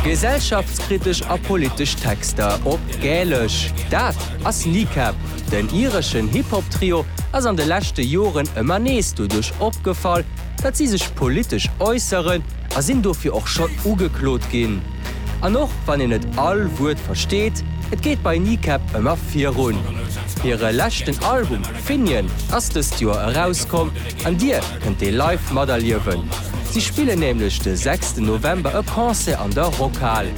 Gesellschaftskritesch a politesch Texter op Gälesch, dat ass Kneecap. Den ireschen Hip-Hop-Trio ass an de leschte Joren ëmmer nees doduerch opgefall, datt si sech politesch äusseren a sinn dofir och schonn ugeklot ginn. An och wann een net all Wuert versteet, et geet bei Kneecap ëmmer virun. Hire leschten Album Finian ass dëst Joer erauskomm an Dir kënnt dee live materliewen. Si spillen nämlech de sechsten November e Concert an der Rockhal.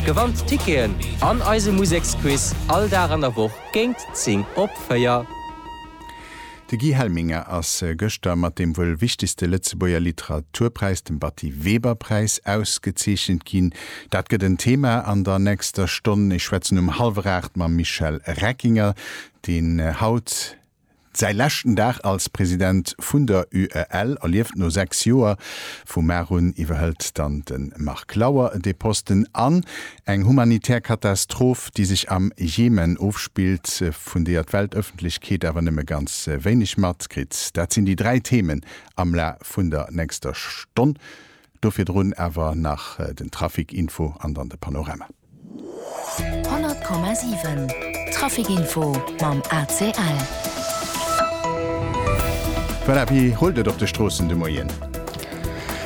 Gewannt d'Ticketen an eise Museksquiz all Dag an der Woch géingt 10 op 4. De Guy Helminger ass gëschter mat deem wuel wichtegste Lëtzebuerger Literaturpräis, dem Batty-Weber-Präis, ausgezeechent ginn. Dat gëtt en Thema an der nächster Stonn. Ech schwätzen um hallwer aacht mam Michel Reckinger, deen haut säi leschten Dag als President vun der UEL erlieft. No 6 Joer, vum Mar un, iwwerhëlt dann de Marc Lauer de Posten an Eng humanitär Katastroph, déi sech am Jemen ofspillt, vun deeër d'Weltëffentlechkeet awer nëmme ganz wéineg matkritt. Dat sinn déi dräi Themen am La vun der nächster Stonn. Do virdrun awer nach den Trafic Info an dann de Panorama. 100,7 Trafic Info mam ACL. Voilà, wéi rullt et op de Stroossen de Moien?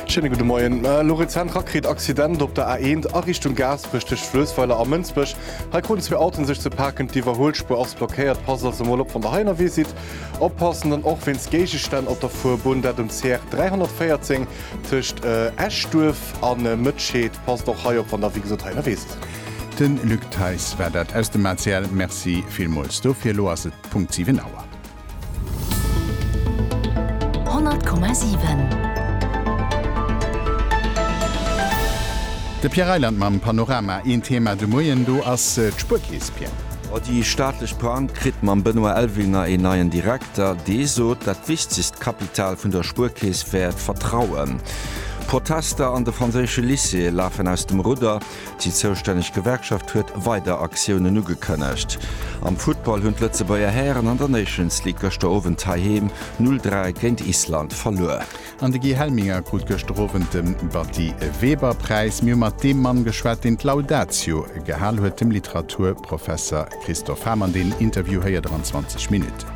Schéine gudde Moien. Elo rezent rakritt Accident op der A1 a Richtung Gaasperech tëscht Fluessweiler a Mënsbech. Hei kruten zwee Autoen sech ze paken. D'Iwwerhuelspuer ass blockéiert. Passt also mol op wann der hei ënnerwee sidd. Oppassen dann och wéinst Géigestänn op der Fuerbunn, dat um CR 314 tëscht Eschduerf a Mëtscheed. Passt och hei op wann der wéi gesot hei ënnerwee sidd. Den Luc Theis war dat aus dem ACL. Merci villmools dofir. Elo ass et Punkt 7 Auer. De Pierre Reyland mam Panorama. Een Thema de Moien, do ass d'Spuerkeess, Pierre. A déi staatlech Bank kritt mam Benoît Elvinger een neien Direkter. Dee sot, dat wichtegst Kapital vun der Spuerkeess wär d'Vertrauen. D'Protester an de franséische Lycéeë lafen aus dem Rudder. Déi zoustänneg Gewerkschaft huet weider Aktiounen ugekënnegt. Am Futtball hunn d'Lëtzebuerger Hären an der Nations League gëschter Owend heiheem 0, 3 géint Island verluer. An de Guy Helminger krut gëschter Owend de Batty Weber Präis. Mir hu mat deem Mann geschwat, deen d'Laudatio gehal huet, dem Literaturprofesser Christophe Hamann. Deen Interview héiert der an 20 Minutten.